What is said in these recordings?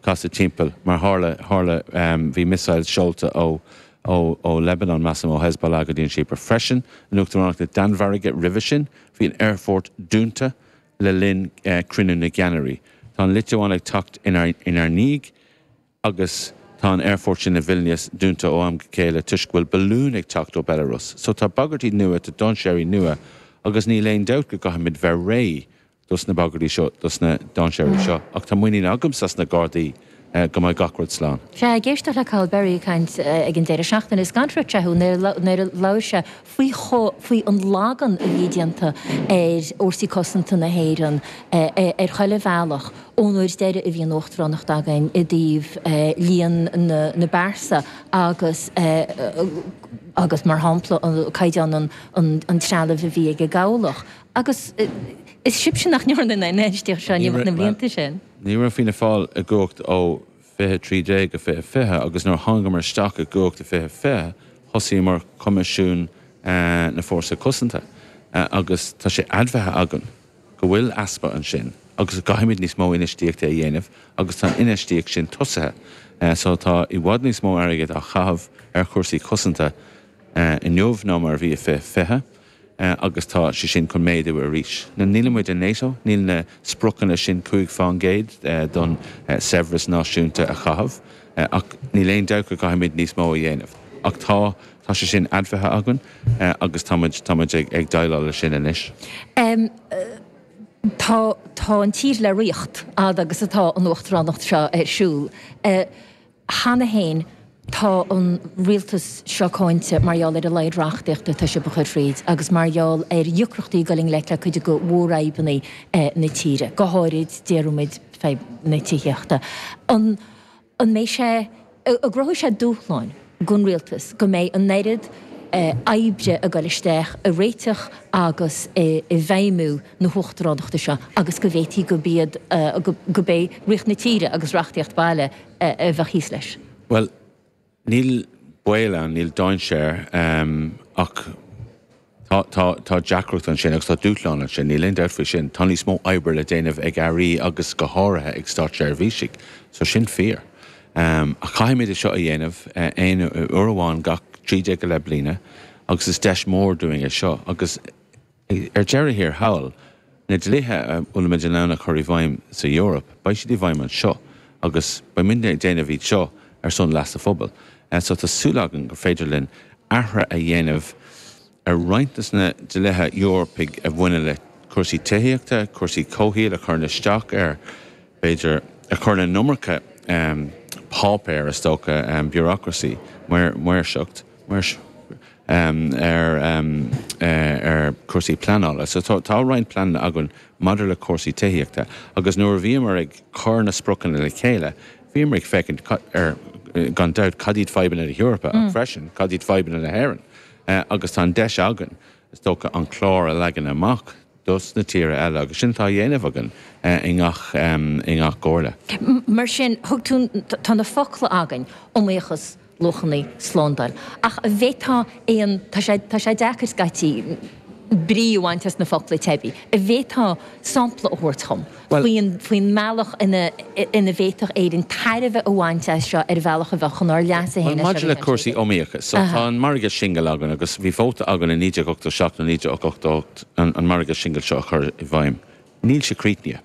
casadh timpeall, mar tharla, tharla, bhí missiles seolta ó, ó, ó Liobáin, measaim ó Hezbollah go dtí an Chipir freisin, in Uachtaránacht na Danmhairge roimhe sin, bhí an aerfort dúnta le linn, eh, cruinniú na gceannairí. Tá an Liotuáin ag teacht inár, inár ndiaidh agus tá an aerfort sin i Vilnius dúnta ó am go céile toisc go bhfuil balún ag teacht ó Belarus. So tá bagairtí nua, tá dainséir nua agus níl aon dabht go gcaithfimid bheith réidh dos na bagairtí seo, dos na dainséaraí seo, ach tá muinín agamsa as na Gardaí go mbeidh gach rud slán. Sea, ag éisteacht le Cathal Berry ag caint ag an deireadh seachtaine, is gan freagra thú nuair a labhair sé faoi faoi an lagú a bhí déanta ar Fhórsaí Cosanta na hÉireann ar chuile bhealach ón uair deiridh a bhí an Uachtaránacht againn i dtaobh líon na bpearsa agus agus mar shampla caighdeán an trealaimh a bhí ag an gCabhlach. Agus is sibhse nach ndearna an infheistíocht seo in imeacht na mblianta sin. Ní raibh Fianna Fáil i gcumhacht ó 2013 go 2020 agus nuair a thángamar isteach i gcumhacht i 2020 thosaíomar Coimisiún na Fórsa Cosanta agus tá sé admhaithe againn go bhfuil easpa ansin agus go gcaithfimid níos mó infheistíochta a dhéanamh agus tá an infheistíocht sin tosaithe so tá i bhfad níos mó airgid á chaitheamh ar chúrsaí cosanta inniu ná mar a bhí i 2020. agus tá sé sin chun méadú arís. Nílimid i Nato, níl na spriocanna sin cúig fán gcéad don saibhreas náisiúnta a chaitheamh, ach níl aon dabht go gcaithfimid níos mó a dhéanamh. Ach tá, tá sé sin admhaithe againn agus táimid, táimid ag déileáil leis sin anois. Tá, tá an tír le rith, fhad agus atá an uachtaránacht seo ar siúl. Cheana féin tá an rialtas seo cáinte mar gheall ar a laghad reachtaíochta atá siad ag cur thríd agus mar gheall ar dheacrachtaí ag dul i ngleic le cuid de mhórfhadhbanna na tíre, go háirid, déarfaimid, fadhb na tithíochta. An mbeidh sé, an gcruthóidh sé dúshláin don rialtas go mbeidh an oiread oibre ag dul isteach i réiteach agus i bhfeidhmiú na huachtaránachta seo agus go bhféadfadh gurb iad, gurb é rith na tíre agus reachtaíocht bhaile, a bheadh thíos leis. Bhuel, níl baol ann, níl dainséar, ach tá, tá, tá deacracht ansin agus tá dúshlán ansin, níl aon dabht faoi sin. Tá níos mó oibre le déanamh ag Airí agus go háirithe ag státseirbhísigh, so sin fíor. Ach caithfimid é seo a dhéanamh aon uair amháin gach trí déag go leith bliana agus is deis mhór dúinn é seo agus, Ar deireadh thiar thall, na dlíthe a bhfuilimid in ann a chur i bhfeidhm sa Eoraip, beidh siad i bhfeidhm anseo agus beimidne ag déanamh iad seo ar son leas an phobail. So tá súil againn gur féidir linn athruithe a dhéanamh ar roinnt de na dlíthe Eorpaigh a bhaineann le cúrsaí tithíochta, cúrsaí comhshaoil, a chuireann isteach ar, b'fhéidir, a chuireann an iomarca páipéir is dócha, bureaucracy, maoirseacht, um, ar, um, eh, ar cúrsaí pleanála. So tá, tá roinnt pleananna againn maidir le cúrsaí tithíochta agus nuair a bhíomar ag cur na spriocanna le chéile, bhíomar ag féachaint cad, ar, eh, gan dabht, cad iad fadhbanna na hEorpa ach freisin cad iad fadhbanna na hÉireann. Eh, agus tá an deis againn, is dócha, an clár a leagan amach dos na tíortha eile agus sin atá á dhéanamh againn i ngach, i ngach comhairle. Mar sin, thug tú, tá na focla againn, iomaíochas, luachanna, slándáil. Ach an bhféadfá aon, tá sé, tá sé deacair scaití brí a bhaint as na focla teibí, an bhféadfá sampla a thabhairt dhom? Faoin mbealach ina bhféadfadh Éirinn tairbhe a bhaint as seo ar bhealach a bheadh chun ár leasa. Bhuel, maidir le cúrsaí iomaíocha, so, tá an margadh singil againn agus bhí vóta againn i 1987 nó 1988 an margadh singil seo a chur i bhfeidhm. Níl sé críochnaithe.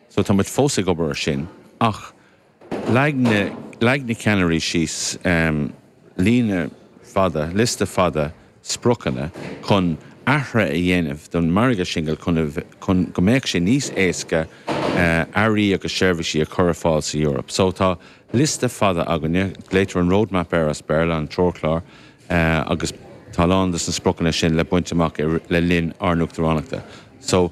So, táimid fós ag obair air sin ach Leag na ceannairí síos líne fada, liosta fada spriocanna chun athruithe a dhéanamh don mhargadh singil chun go mbeadh sé níos éasca earraí agus seirbhísí a chur ar fáil san Eoraip. So tá liosta fada againne, glaoitear an roadmap air as Béarla, an treoirchlár, agus tá a lán dos na spriocanna sin le baint amach le linn ár n-uachtaránachta. So.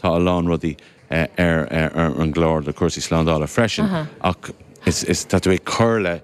Tá a lán rudaí ar an gclár do chúrsaí slándála freisin ach is tá tú ag cur le